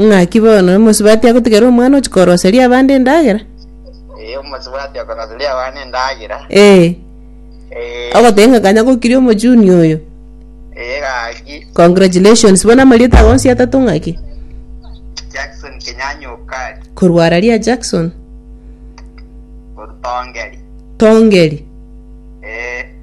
Ng'aki bono, omosubati agotigera omwana ochia koroseria abande endagera? Ee, omosubati okoroseria abana endagera. Ee, Ee, ogoteba ng'a kanya gokiria omojuni oyo. ee gaki. Congratulations, bono amarieta ago onsi atato ng'aki? Jackson Kenyanya Okari, Korwa ara ria Jackson Orutongeri. Tongeri. Ee,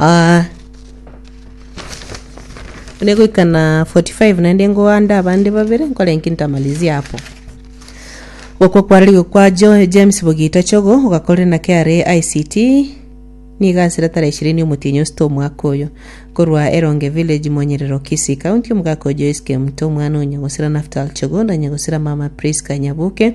Ah, buna egoika na 45 naende ngoande abande babere nkore inki ntamalizie apo gokwa kwarerigwe kwa jo james bogita chogo ogakorire na kra ict nigo ase retara ishirini omotienyi osito omwaka oyo korwa eronge village monyerero kisii county omogaka o joyce kemto omwana o nyagosira naftal chogo na nyagosira mama prisca nyabuke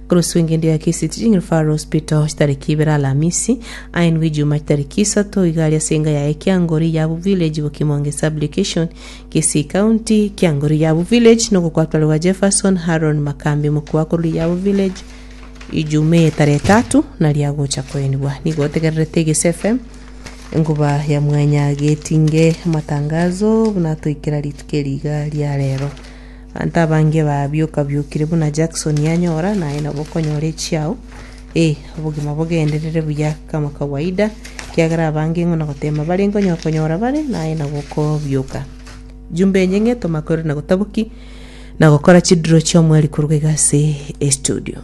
Oroswengendi ya Kisiti General Faro Hospital chitariki ibere Alamisi, aye nigo Ijumaa chitariki isato iga aria ase enga yaye Kiangori Yabu Village Bokimonge Sub-Location, Kisii County, Kiangori Yabu Village, nogokwatorwa gwa Jefferson Haron Makambi mokubao korwa Yabu Village Ijumaa eye tara etato naria agocha koenigwa. Nigo otegererete Gesi FM enkuba ya mwanya getinge amatangazo buna atoikera rituko eri iga ria rero. Abanto abange babioka-biokire buna Jackson yanyora, naye nabo okonyora echi ao, ee, obogima bogenderere buya kama kawaida, ekiagera abange ng'o na goteema bare nkonyo konyora bare, naye nabo okobioka. Jumbe enye ng'e tomakorire na gotaboki na gokora chidiro chi'omweri koruga iga ase estudio.